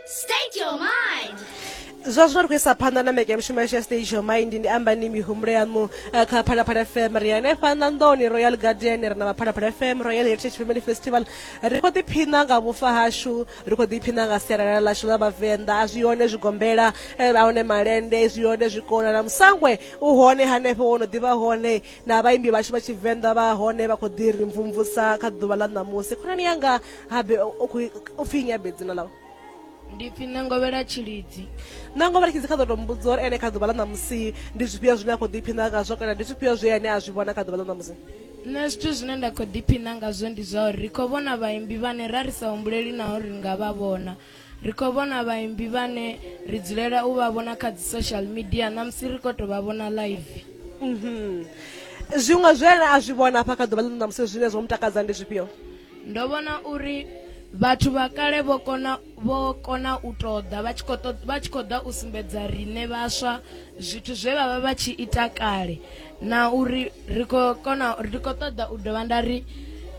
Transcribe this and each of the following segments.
State your mind. zwa zwino ri khou isa phanḓa na meke ya mushumo yashu ya stage your mind ndi amba ni mihumbulo yaṋu eh, kha phalaphala fm ri hanefha ṋanḓoni royal guardian ri na vhaphalaphala fm royal heritage family festival ri khou ḓiphina nga vhufa hashu ri khou ḓiphina nga sialala ḽashu ḽa vhavenḓa a zwi hone zwigombela eh, a hone malende zwi hone zwikona na musangwe u hone hanefho wo no ḓivha hone na vhaimbi vhashu vha tshivenḓa vha hone vha khou ḓi ri mvumvusa kha ḓuvha ḽa ṋamusi khonani yanga habe u pfhi nyabe dzina ḽau ndi pfhi ṋangovhela tshilidzi ṋangovhela tshilidzi kha ḓo to mbudza uri ene kha ḓuvha ḽa ṋamusi ndi zwifhio zwine a khou ḓiphina ngazwo kana ndi zwifhio zwe ane a zwi vhona kha ḓuvha ḽa ṋamusi nṋe zwithu zwine nda khou ḓiphina ngazwo ndi zwa uri ri khou vhona vhaimbi vhane ra ri sa humbuleli naho ri nga vha vhona ri khou vhona vhaimbi vhane ri dzulela u vha vhona kha dzi social media na musi ri khou tou vha vhona live mhm. zwiṅwe zwe a zwi vhona hafha kha ḓuvha ḽino na musi zwine zwo mu takadza ndi zwifhio ndo vhona uri vhathu vha kale vho kona vho kona u ṱoḓa vha tshi khou ṱoḓa vha tshi khou ḓa u sumbedza riṋe vhaswa zwithu zwe vha vha vha tshi ita kale na uri ri khou kona ri khou ṱoḓa u dovha nda ri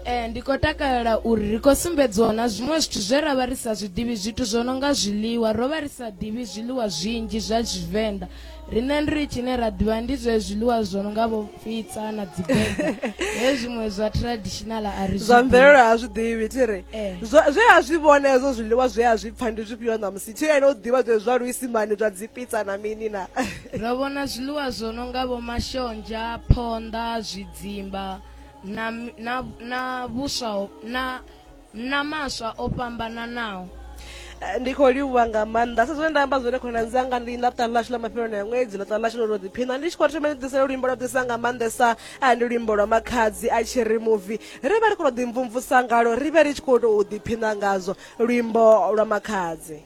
eh, ndi khou takalela uri ri khou sumbedziwa na zwiṅwe zwithu zwe ra vha ri sa zwiḓivhi zwithu zwo no nga zwiḽiwa ro vha ri sa ḓivhi zwiḽiwa zwinzhi zwa tshivenḓa riṋe ri tshine ra ḓivha ndi zwe zwiḽiwa zwo no nga vho pizza na dzi burger he zwiṅwe zwa traditional a ri zwa mvelelo a zwi ḓivhi thi ri eh. zwe a zwi vhona hezwo zwiḽiwa zwe a zwi pfha ndi zwifhio ṋamusi thi ene u ḓivha zwe zwa luisimani zwa dzi pizza na mini na ro vhona zwiḽiwa zwo no nga vho mashonzha phonḓa zwidzimba na na na vhuswa na na maswa o fhambananaho. Ndi khou livhuwa nga maanḓa. Sa zwine nda amba zwone khonani dzanga, ndi ḽa ṱaha ḽashu ḽa mafheloni a ṅwedzi, ḽa ṱaha ḽashu ḽa u tou ḓiphina. Ndi tshi khou thoma ni ḓisela luimbo lwa ḓisa nga maanḓesa, ndi luimbo lwa Makhadzi a tshi ri muvi. Ri vhe ri khou tou ḓimvumvusa ngalwo, ri vhe ri tshi khou tou ḓiphina ngazwo, luimbo lwa Makhadzi.